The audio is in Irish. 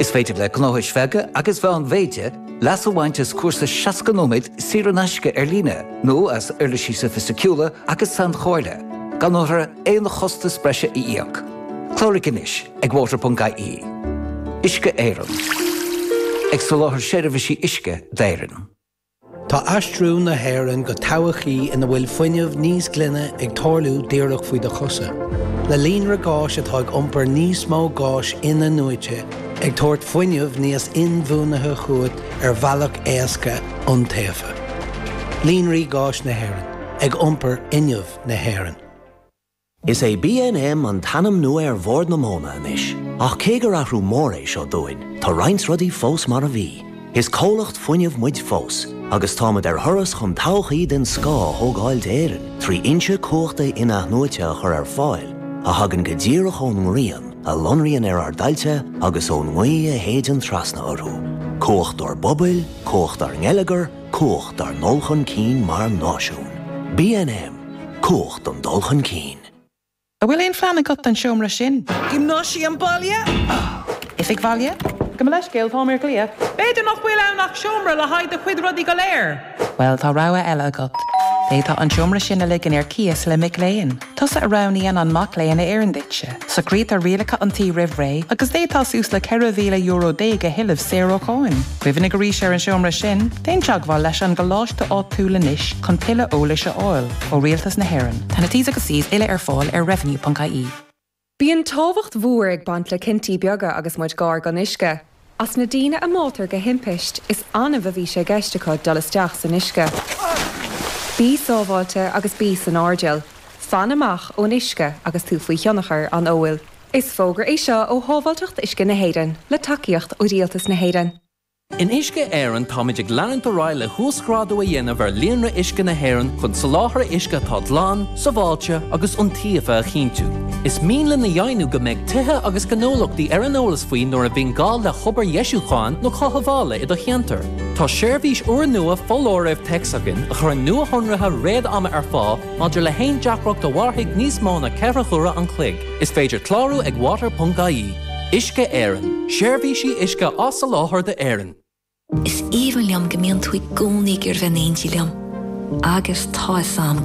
Is féidir le gnóthais bheaga agus mheánmhéide leas a bhaint as cúrsa 60 nóiméad saor in aisce ar líne nó as uirlisí sofaisticiúla agus sainchomhairle, gan orthu aon chostas breise a íoc. Cláraigh anois ag water.ie. Uisce Éireann. Ag soláthar seirbhísí uisce d'Éirinn. Tá aistriú na hÉireann go todhchaí ina bhfuil fuinneamh níos glaine ag tarlú díreach faoi do chosa, le líonra gáis atá ag iompar níos mó gáis in-athnuaite, ag tabhairt fuinneamh níos inbhuanaithe chugat ar bhealach éasca, iontaofa. Líonraí Gáis Éireann, ag iompar fhuinneamh na hÉireann. Is é BNM an t-ainm nua ar Bhord na Móna anois, ach cé gur athrú mór é seo dúinn, tá roinnt rudaí fós mar a bhí. Is comhlacht fuinnimh muid fós, agus táimid ar thuras chun todhchaí den scoth a thógáil d'Éirinn trí fhoinse cumhachta in-athnuaite a chur ar fáil a thagann go díreach ón ngrian a lonraíonn ar ár dtailte agus ón ngaoth a shéideann trasna orthu. Cumhacht dár bpobail, cumhacht dár ngeilleagar, Cumhacht dár ndul chun cinn mar náisiún. BNM, Cumhacht an dul chun cinn. An bhfuil aon phlean agat don seomra sin? Giomnáisiam baile? Oifig bhaile? Gabh mo leithscéal, táim ar ghlaoch. B'fhéidir nach bhfuil ann ach seomra le haghaidh do chuid rudaí go léir. Bhuel, tá rogha eile agat. D'fhéadfá an seomra sin a ligean ar cíos le mic léinn. Tusa a roghnaíonn an mac léinn a oireann duitse. Socraítear rialacha an tí roimh ré agus d'fhéadfá suas le €14,000 a thuilleamh saor ó cháin. Cuimhnigh arís ar an seomra sin, déan teagmháil leis an gcoláiste áitiúil anois chun tuilleadh eolais a fháil ó Rialtas na hÉireann. Tá na T's agus C's uile ar fáil ar revenue.ie. Bíonn tábhacht mhór ag baint le cinntí beaga agus muid gar don uisce. As na daoine a mbáitear de thimpiste, is annamh a bhí sé i gceist acu dul isteach san uisce. Bí sábháilte agus bí san airdeall. Fan amach ón uisce agus tú faoi thionchar an óil. Is fógra é seo ó Shábháilteacht Uisce na hÉireann, le tacaíocht ó Rialtas na hÉireann. In Uisce Éireann táimid ag leanúint ar aghaidh le huasghrádú a dhéanamh ar líonra uisce na hÉireann chun soláthar uisce atá glan, sábháilte agus iontaofa a chinntiú. Is mian linn a dheimhniú go mbeidh tithe agus gnólachtaí ar an eolas faoi nuair a bhíonn gá le hobair dheisiúcháin nó chothabhála i do cheantar. Tá seirbhís úrnua foláirimh téacs againn a chuireann nuashonruithe fíor-ama ar fáil maidir le haon deacracht a mhairfidh níos mó ná ceithre huaire an chloig. Is féidir clárú ag water.ie. Uisce Éireann, Seirbhísí uisce á soláthar d'Éirinn. Is aoibhinn liom go mbíonn tú i gcónaí ag gabháil a bheith in éindí liom, agus tá fhios 'am go.